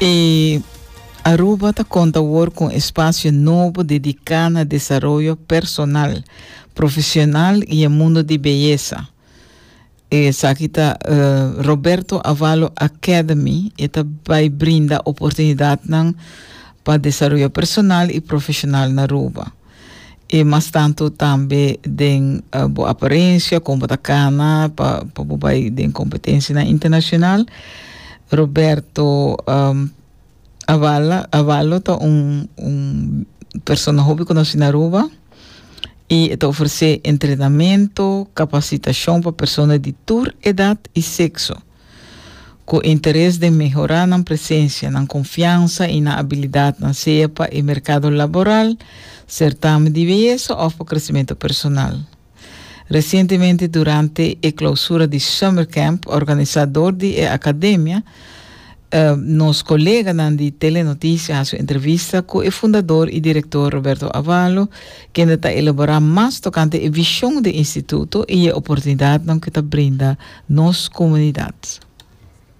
E Aruba ta konta awor kon espasio nobo dediká na desaroyo personal, profesional i e mundo di beyesa. Esaki ta Roberto Avalo Academy, e ta bai brinda oportunidatnan pa desaroyo personal i profesional na Aruba. I mas tantu tambe den bo aparensia, kon bo ta kana pa pa bo bai den kompetensianan internashonal. Roberto um, Avala, Avallo ta un, un persona hopi konosí na Aruba i e ta ofresé entrenamento, kapasitashon pa persona di tur edat i sekso. ku interes den mehorá nan presensia, nan konfiansa i nan abilidatnan, sea pa e merkado laboral, sertamen di beyesa òf pa kresementu personal. Resientemente durante e klousura di Summer Camp organisá dor di e akademia, nos koleganan di Telenotisia hasi un entrevista ku e fundador i direktor Roberto Avalo, kende ta elaborá mas tokante e vishon di e instituto i e oportunidatnan ku ta brinda nos comunidad.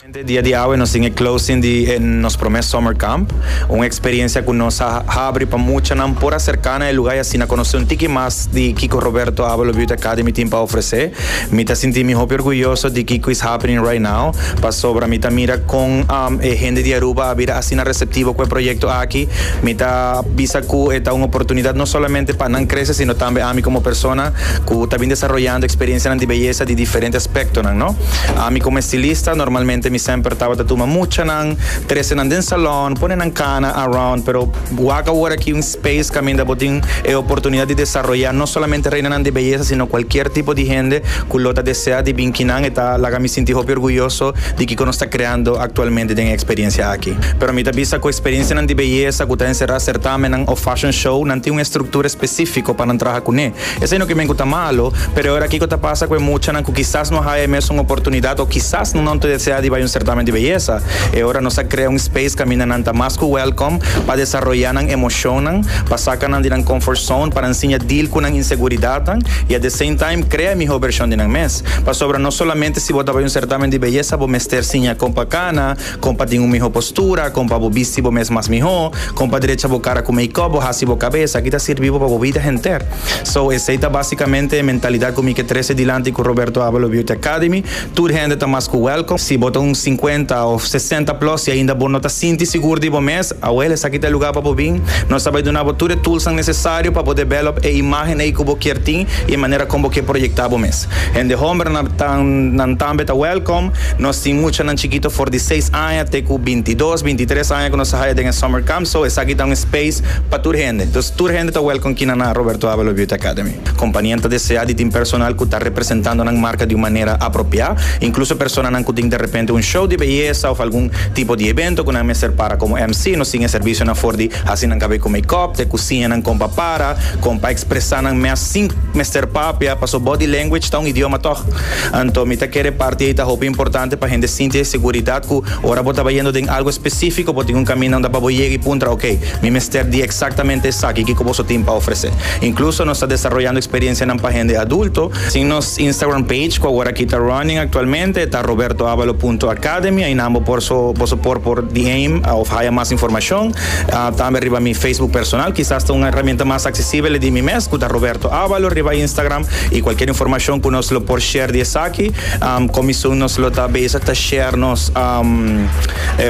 Mente dia di awe nos tin e closing di e nos prome summer camp, un experiencia cu nos a habri pa muchanan por a cerca na e lugar y asina conoce un tiki mas di kico Roberto Abelot Beauty Academy tin pa ofrece. Mi ta sinti mi hopi orguyoso di kico is happening right now pasobra mi ta mira con e hende di Aruba a bira asina receptivo cu e proyecto aki. Mi ta bisa cu e ta un oportunidad no solamente pa nan crece sino tambe ami como persona. ku ta bin desaroyando eksperensianan di beyesa di diferente aspektonan, no? Ami komo estilista, normalmente mi semper tabata tuma muchanan, trese nan den salòn, pone nan kana around, pero wak awor aki un space kaminda bo tin e oportunidat di desaroyá no solamente reinanan di beyesa sino kualkier tipo di hende ku lo ta deseá di bin kinan. E ta laga mi sinti hopi orguyoso di kiko nos ta kreando aktualmente den e eksperensia aki. Pero mi ta bisa ku eksperensianan di beyesa ku ta enserá sertámennan òf fashion show nan tin un estruktura espesífiko pa nan traha. Kuné? Esei no ke men ku ta malu, pero e ora kiko ta pasa ku e muchanan ku kisas no haya e mesun oportunidat o kisas nan no ta desea di bai un sertamen di beyesa? E ora nos a krea un space kaminda nan ta mas ku wèlkom pa desaroyá nan emoshonnan, pa saka nan di nan comfort zone, pa nan siña deal ku nan inseguridatnan i at the same time krea e mihó bershon di nan mes. Pasobra no solamente si bo ta bai un sertamen di beyesa bo mester siña kon pa kana, Kon pa tin un mihó postura, kon pa bo bisti bo mes mas mihó, kon pa drecha bo kara ku make-up, bo hasi bo kabes, aki ta sirbi bo pa bo bida henter. So, esei ta básikamente e mentalidat ku mi ke trese dilanti ku Roberto Abalo Beauty Academy. Tur hende ta mas ku wèlkom. Si bo ta un sinkuenta òf sesenta plòs i ainda bo no ta sinti sigur di bo mes, Awel, esaki ta e lugá pa bo bin. Nos ta bai duna bo tur e tulsnan nesesario pa bo debèlòp e imágen ei ku bo kier tin i e manera kon bo ke proyektá bo mes. Hende hòmber nan ta nan tambe ta wèlkom. Nos tin muchanan chikito for di seis aña te ku binti dos, binti tres aña ku nos ta haya den e summer camp, so esaki ta un space pa tur hende. Dus tur hende ta wèlkom kina na Roberto Avila Beauty Academy. Kompanianan ta desea di tin personal ku ta representando nan marka di un manera apropiá, inkluso personanan ku tin derepente un show di beyesa òf algun tipo di ebento ku nan mester para komo MC. Nos tin e serbisionan for di hasi nan kabé ku makeup, te ku siñanan kon pa para, kon pa ekspresá nan mes sin mester papia, pasobra body language ta un idioma tòg. Anto mi ta kere e parti ei ta hopi importante pa hende sinti e seguridat ku ora bo tabata yendo den algu espesífiko bo tin un kaminda unda pa bo yega i puntra, Okey, mi mester di eksaktamente esaki, kiko boso tin pa ofresé? Incluso nos ta desaroyando experiencianan pa hende adulto. Sin nos Instagram page, cu awor aki ta running actualmente, ta robertoavalo.academy. Ainan bo por so, boso por por DM of haya mas informacion. Tambe riba mi Facebook personal, kisas ta un herramienta mas accesibele di mi mes, cu ta Roberto Avalo riba Instagram. Y cualkier informacion cu nos lo por share di esaki, comisun nos lo ta bezig ta share nos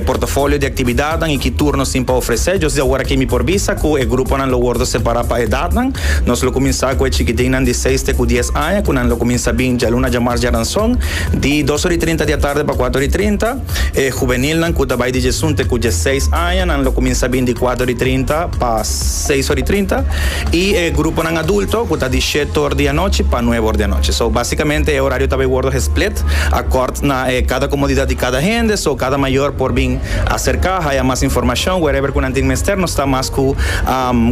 portafolio di actividad. Edatnan i ki turnos tin pa ofresé. Djosdi awor aki mi por bisa ku e gruponan lo wordo separá pa edatnan. Nos lo kuminsá ku e chikitinnan di seis te ku dies aña ku nan lo kuminsá bin djaluna djamars djaranson di dos ora i trinta di atarde pa kuater ora i trinta. E hubenilnan ku ta bai di djesun te ku djeseis aña nan lo kuminsá bin di kuater ora i trinta pa seis ora i trinta i e gruponan adulto ku ta di shet or di anochi pa nuebe or di anochi. So basikamente e orario ta bai wordo hesplit akòrt na e kada komodidat di kada hende. So kada mayor por bin. Acerca haya mas informacion wherever cu nan tin mester nos ta mas cu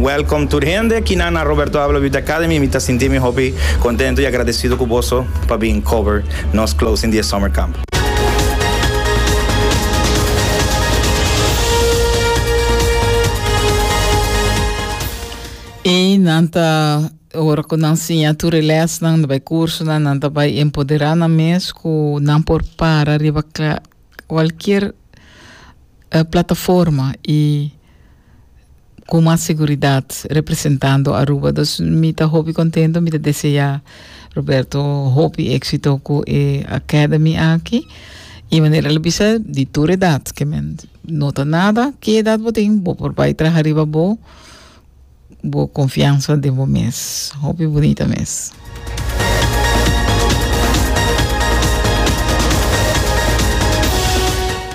welcome tur hende kinan na Roberto Abela Beauty Academy mi ta sinti mi hopi contento y agradecido cu boso pa bin cover nos closing di e summer camp. Y nan ta ora cu nan siña tur e lesnan riba e cursonan nan ta bay empodera nan mes cu nan por para riba Cualkier plataforma y cu mas seguridad representando Aruba. Dus mi ta hopi contento, mi ta desea Roberto hopi exito cu e Academy aki. Y manera el a bisa, di tur edad, que men no ta nada, ki edad bo tin, bo por bai traha riba bo Bo konfiansa den bo mes. Hopi bunita mes.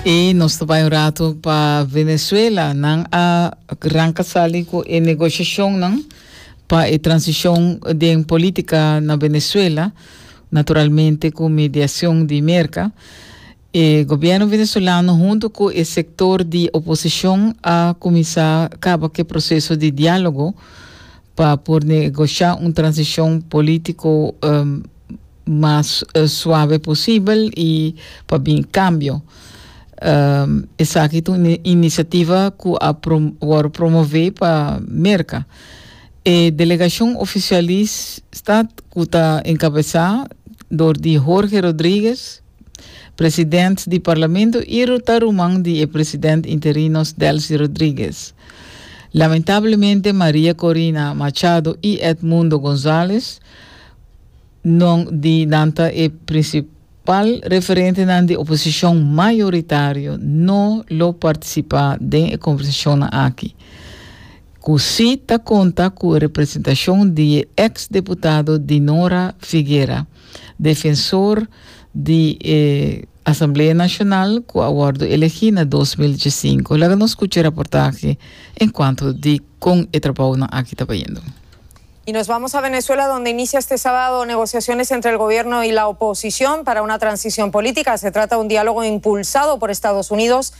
I nos ta bai un ratu pa Venezuela. Nan a ranka sali ku e negosiashonnan pa e transishon den polítika na Venezuela, naturalmente ku mediashon di Merka. E gobierno venezolano hunto cu e sector di oposicion a cuminsa caba cu e proceso di dialogo pa por negocia un transicion politico mas suave posibel y pa bin cambio. Esaki ta un iniciativa cu a wor promove pa Merca. E delegacion oficialista cu ta encabeza door di Jorge Rodriguez, President di Parlamento y ru ta ruman di e President Interinos Delcy Rodriguez. Lamentablemente Maria Corina Machado y Edmundo Gonzalez non di nan ta e principal referentenan di oposición mayoritario no lo participa den e conversacionnan aki cu si ta conta cu representacion di e ex-deputado Dinora Figuera. Defensor di e Asamblea Nacional cu a wordo elegi na dos mil diecinco. Laga nos scucha e raportahe en cuanto di con e trabounan aki ta bayendo. Y nos vamos a Venezuela donde inicia este sábado negociaciones entre el gobierno y la oposición para una transición política. Se trata un diálogo impulsado por Estados Unidos.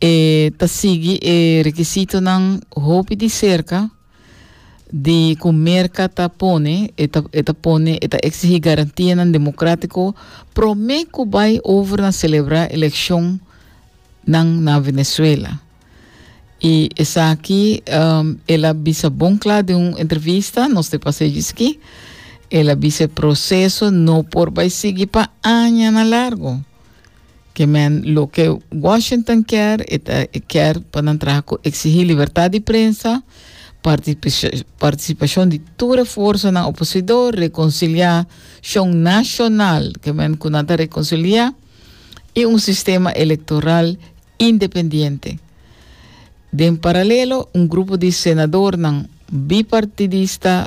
E ta sigui e rekisitonan hopi di serka di ku Merka ta pone, e ta, e ta pone, e ta eksihí garantianan demokratiko promé ku bai over na selebrá elekshonnan na Venezuela. I esaki um, el a bisa bon kla den un entrevista, nos te pasé djiski, el a bisa e proseso no por bai sigui pa añanan largo. Ke men loke Washington kier, e ta e kier pa nan traha ku eksigí libertat di prensa, partisipashon di tur e forsanan oposidor, rekonsiliashon nashonal, ke men ku nan ta rekonsiliá, i un sistema elektoral independiente. Den paralelo, un grupo di senadornan bipartidista,